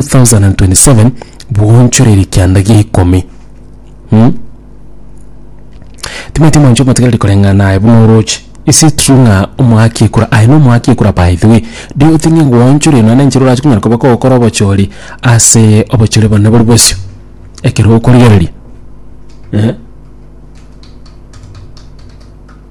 2027 bwonchoreire kianda gia ikomi mm? timanyeti mwancho motigareri koreng'ana naye buna oroche is it true ng'a omoaki ekura aye nomoaki ekura by the way do you think ngoonchorire nonya nenchera orache konyara koba kogokora obochori ase obochori bone bori bosio ekero okorigereria eh?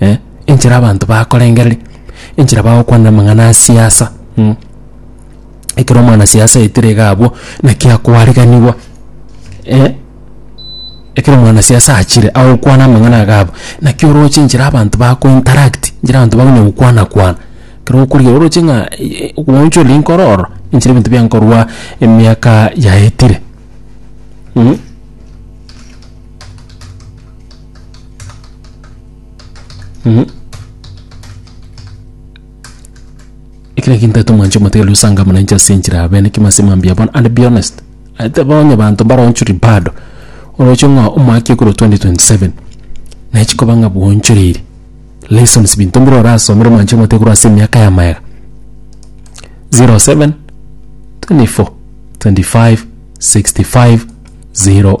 eh, enchera abanto bakorengereria, enchera bagokwanera amang'ana a siasa mm. Ekero omwana siasa aetire iga abwo, naki akoariganigwa eh, ekero omwana siasa achire agokwana amang'ana iga abwo, naki oroche enchera abanto bako interact, enchera abanto bakonya gokwana kwana, ekero okorigereria oroche ng'a eh, obogoncha oria nkoro ororo, enchera ebinto biankorwa emiaka yaetire mm. Ekero gintaete omwancho omotiga riria osanga buna inche ase enchera yabeene ekimo ase mambia bono and be honest aiteba onye banto mbaroonchori bado oroche ng'a omwaka ekorwa 2027 nachi koba ng'a bwonchoreiri lessons binto bire orasomere omwancho omotiga korwa ase emiaka ya magega 07, 24, 25, 65, 0.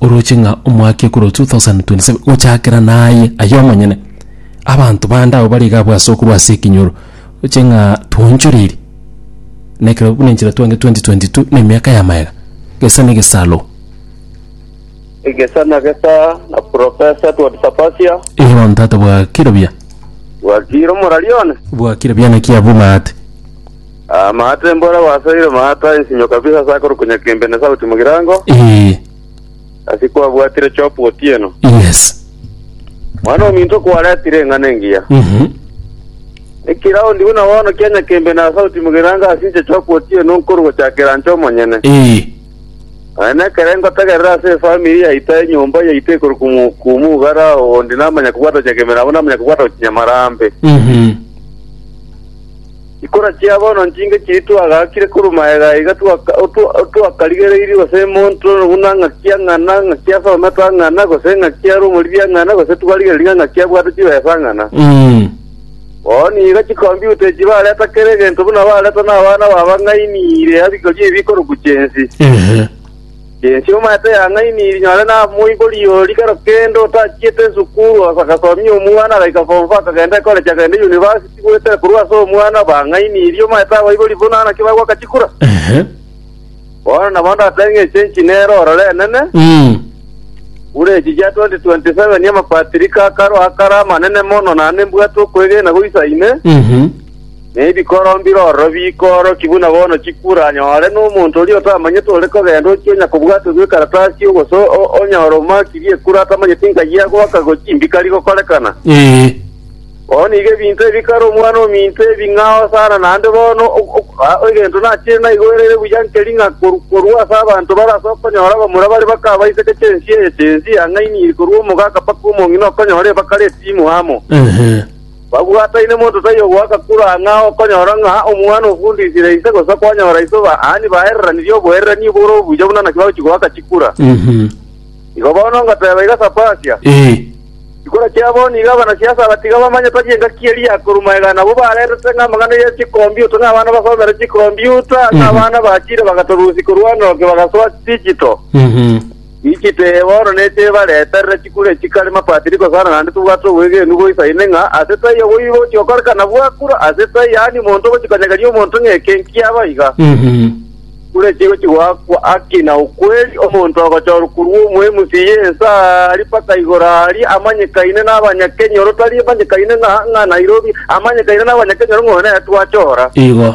oroche ng'a omwaka ekero 2027 gochakera naye aye omonyene, abanto bande abwo bare iga abwo ase okorwa ase ekenyoro, oroche ng'a twaonchoreiri na ekero buna inche natwanire 2022 na emiaka ya maega, gesa na egesaro. Egesa na gesa na Professor Edward Sapasia. Erio bono tata bwa kirobia, Bwakire omorari one. bwa kirobia naki abumate. Amaate mbore abasoire maata ensinyo kabisa ase akorukunya kembe na esauti mogirango, Ee, ase kwabwatire chopu otieno. yes. Mwana ominto kwaretire eng'ana engiya. Mhm. Ekiraundi buna bono kia nyakembe na esauti mogirango ase inche chopu otieno nkorwa gochakera inche omonyene. Ee, Aye nekere ngotegerera ase efamiri yaito enyomba yaito ekorwa kumu- kumugara onde namanya kobwata nyakembe nabo namanya kobwata gochinyamarambe. mhm. Chikura chia bono nchinke chiria twagaakire korwa magega iga twakarigereirie gose monto buna ng'aki ya ng'ana, ng'aki ase ometo a ng'ana, gose ng'aki are omoriri a ng'ana, gose twarigereria ng'aki abwate chibesa a ng'ana. Bono iga chikombiuta echi bareta kera egento buna bareta nabana babang'aini ire ya riiko ri'ebikoroku chi'ense. Inche omanyete yang'aini rinyore namoibori oria kero kende otachiete esukuru agasomia omwana agaika form four akagenda ekoregi akagenda University goetera korwa ase omwana bang'aini eria omanyete abaibori buna naki bagoaka chikura. Ehe. Bono nabo ndatebe ng'a echenchi nero ororo enene, Mm. buna echi chia 2027 amapatirika akaro akare amanene mono naende mbwate okwegena goisaine, Mhm. na ebikoro mbirororo biikooroki buna bono chikure, anyore nomonto oria otamanyete ore kogenda ochia onye kobwatwa bw'ekaratasi ogoso o- onyore omakirie ekura atamanyeti nka yia goaka go chimbikari gokorekana. Ee. Bono iga ebinto ebi kare omwana ominto ebing'ao sana, naende bono o- o- a- egento nachire naigwerere buya nkeri ng'a koru- korwa ase abanto bare ase okonyora abamura bare bakabaiseke chensi eye chensi ang'aini iri korwa omogaka mpaka omong'ina okonyora ebakare etimu amo. Ehe. Babwataine monto taiyo ogoaka kure ang'e ao okonyora ng'a omwana ofundisire ise, gose kwanyora iso baani baereranirie oboererania bore obuya buna naki bagochia goaka chikura. Mhm. Igo bono ngoteeba iga ase Apasia, Ee. chikura chia bono iga abanasiasa abatiga bamanye tari engaki eria ya koruma iga nabwo baretete ng'a amang'ana ye chikombiuta, ng'a abana basomere chikombiuta, ng'a abana bachire bagatorusia korwa enoke bagasoa digital. Mhm. Inchitwe eye bono neche ebareterere chikure chikare mapatiriko sana, naende tobwate obwegenwa boisaine ng'a ase etai obo igo gochiokorekana bwakure ase etai yaani omonto ogochikonyegania omonto ng'a eke nkiabo iga. Chikure chigo chigoakwa aki na okweri, omonto ogochorwa korwa omoemusi ye ense aria mpaka igoro aria, amanyekaine n'Abanyakenyoro, tari amanyekaine ng'a ng'a Nairobi, amanyekaine n'Abanyakenyoro ng'a oyo nere twachora. Igo.